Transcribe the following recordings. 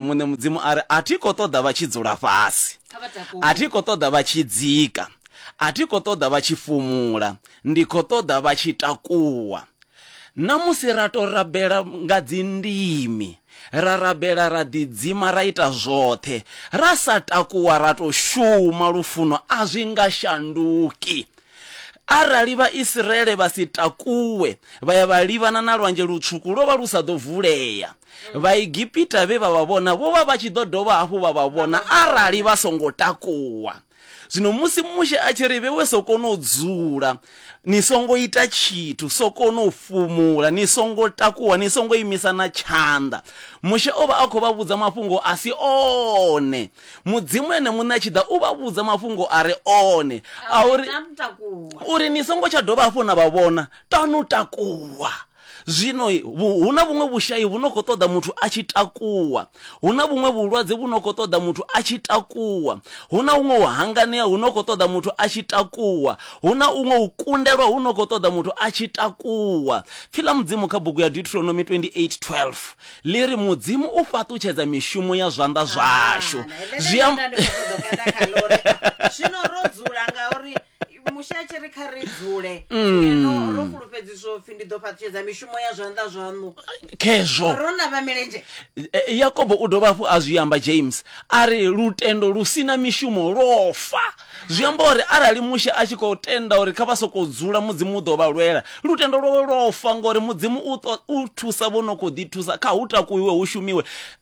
Muṋe Mudzimu a ri, A thi khou ṱoḓa vha tshi dzula fhasi, a thi khou ṱoḓa vha tshi dzika, a thi khou ṱoḓa vha tshi fumula, ndi khou ṱoḓa vha tshi takuwa. Na musi ra tou rabela nga dzindimi, ra rabela ra ḓidzima ra ita zwoṱhe, ra sa takuwa ra tou shuma, lufuno a zwi nga shanduki. Arali Vhaisraele vha si takuwe vha ya vha livhana na Lwanzhe Lutswuku, lwo vha lu sa ḓo vulea. Mm. Vhaegipita vhe vha vha vhona vho vha vha tshi ḓo dovha hafhu vha vha vhona arali vha songo takuwa. Zwino musi Mushe a tshi ri vhewe sokoni u dzula, ni songo ita tshithu, sokoni u fhumula, ni songo takuwa, ni songo imisa na tshanḓa. Mushe o vha a khou vha vhudza mafhungo a si one. Mudzimu ene muṋe a tshi ḓa u vha vhudza mafhungo a re one a uri uri ni songo tsha dovha hafhu na vha vhona, tanu takuwa. Zwino hu na vhuṅwe vhushai vhu no khou ṱoḓa muthu a tshi takuwa. Hu na vhuṅwe vhulwadze vhu no khou ṱoḓa muthu a tshi takuwa. Hu na huṅwe u hanganea hu no khou ṱoḓa muthu a tshi takuwa. Hu na huṅwe u kundelwa hu no khou ṱoḓa muthu a tshi takuwa. Pfi ḽa Mudzimu kha bugu ya Deuteronomy 28, 12 ḽi ri, Mudzimu u fhaṱutshedza mishumo ya zwanḓa zwashu. Zwi amba. Zwino ro dzula ngauri mushe a tshi ri kha ri dzule ngeno ro fulufhedziswa upfi ndi ḓo fhaṱutshedza mishumo ya zwanḓa zwaṋu khezwo ro na vha milenzhe E, yakobo u dovha hafhu a zwi amba james a ri lutendo lu si na mishumo lwo fa zwi amba uri arali mushe a tshi khou tenda uri kha vha sokou dzula mudzimu u ḓo vha lwela lutendo lwawe lwo fa ngori mudzimu u, ṱo- u thusa vho no khou ḓi thusa kha hu takuwiwe hu shumiwe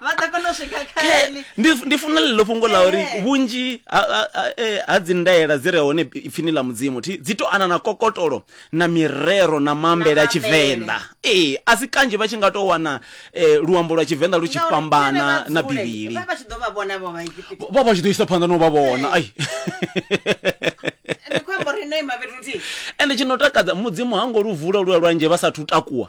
vha ḓo kona u swika kha Ke- ene ndi ndi funa ḽeḽo fhungo ḽa uri Eh. vhunzhi ha- ha- ha- eh, ha dzi ndaela dzi re hone ipfini ḽa mudzimu thi dzi to ana na kokotolo na mirero na maambele Na a tshivenḓa ee a si kanzhi vha tshi nga to wana eh, luambo lwa tshivenḓa lu tshi Ngauri fhambana ene vha na dzule, bivhili vha vha tshi ḓo vha vhona vho vha Egipita. vha vha tshi ḓo isa phanḓa no vha vhona ai Ndi khou amba uri no ima fhethu huthihi. ende tshi no takadza mudzimu ha ngo lu vula lua lwanzhe vha sathu takuwa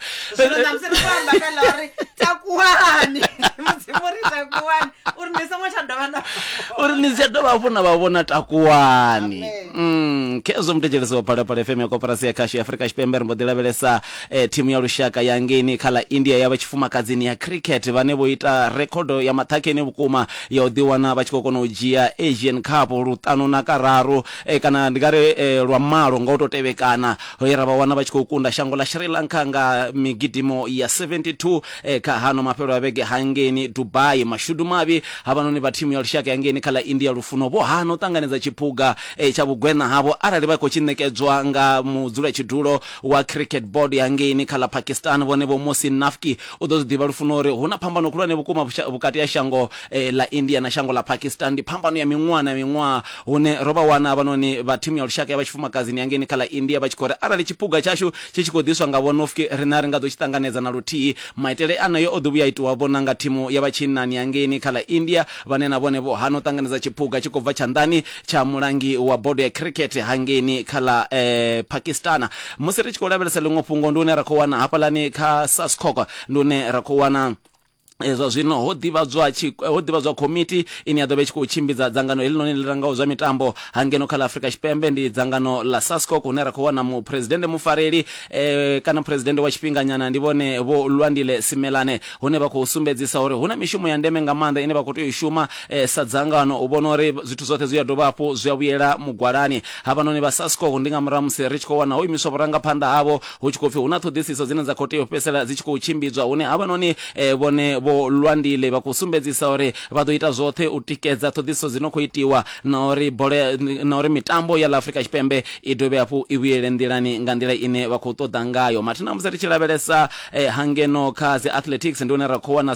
zwino na musi ri khou amba kha ḽa uri takuwani mudzimu ri takuwani uri ni songo tsha dovha na uri ni si dovha hafhu na vha vhona takuwani Mm, khezwo muthetshelesi wa phalaphala fm ya koporasi ya khasho ya afurika tshipembe ri mbo ḓi lavhelesa eh, thimu ya lushaka ya ngeni kha ḽa india ya vha tshifumakadzini ya cricket vhane vho ita rekhodo ya maṱhakheni vhukuma ya u ḓiwana vha tshi khou kona u dzhia asian cup luṱanu na kararu eh, kana ndi nga ri eh, lwa malo nga u tou tevhekana he ra vha wana vha tshi khou kunda shango ḽa Sri Lanka nga migidimo ya 72 kha hano mafhelo a vhege hangeni Dubai. Mashudu mavhi havhanoni vha thimu ya lushaka ya ngeni kha ḽa India Lufuno vho hana u ṱanganedza tshiphuga tsha vhugweṋa havho arali vha khou tshi ṋekedzwa nga mudzulatshidulo wa Cricket Board ya ngeni kha ḽa Pakistan Vhone Vho Mohsin Nafki u ḓo zwi ḓivha Lufuno uri hu na phambano khulwane vhukuma vhukati ha shango ḽa India na shango ḽa Pakistan ndi phambano ya miṅwaha na miṅwaha Hune ro vha wana havhanoni vha thimu ya lushaka ya vha tshifumakadzini ya ngeni kha ḽa India vha tshi khou ri, Arali tshiphuga tshashu tshi tshi khou ḓiswa nga Vho Nofke, riṋe a ri nga ḓo tshi ṱanganedza na luthihi. Maitele aneo o ḓi vhuya a itiwa-vho na nga thimu ya vha tshinnani ya ngeni kha ḽa India, vhane na vhone vho hana u ṱanganedza tshiphuga tshi khou bva tshanḓani tsha mulangi wa bodo ya khirikhethe ha ngeni kha ḽa Pakistan. Musi ri tshi khou lavhelesa ḽiṅwe fhungo, ndi hune ra khou wana hafhaḽani kha Saskok, ndi hune ra khou wana. Eh, zwa zwino ho ḓivhadzwa ho ḓivhadzwa komiti ine ya ḓo vha i tshi khou tshimbidza dzangano helinoni ḽi rangaho zwa mitambo hangeno kha ḽa afurika tshipembe ndi dzangano ḽa sascoc hune ra khou wana muphuresidennde mufareli eh, kana phuresidennde wa tshifhinganyana ndi vhone vho lwandile simelane hune vha khou sumbedzisa uri hu na mishumo ya ndeme nga maanḓa ine vha khou tea u shuma eh, sa dzangano u vhona uri zwithu zwoṱhe zwi a dovha hafhu zwi a vhuyela mugwalani havhanoni vha sascoc ndi nga murahu musi ri tshi khou wana ho imiswa vhurangaphanḓa havho hu tshi khou pfi hu na ṱhoḓisiso dzine dza khou tea u fhedzisela dzi tshi khou tshimbidzwa hune havhanoni eh, vhone vho lwandile vha khou sumbedzisa uri vha ḓo ita zwoṱhe u tikedza ṱhoḓisiso dzi no khou itiwa na uri bola ya- na uri mitambo ya ḽa afrika tshipembe i dovhe hafhu i vhuyele nḓilani nga nḓila ine vha khou ṱoḓa ngayo mathina musi ri tshi lavhelesa eh, hangeno kha dzi athletics ndi hune ra khou wana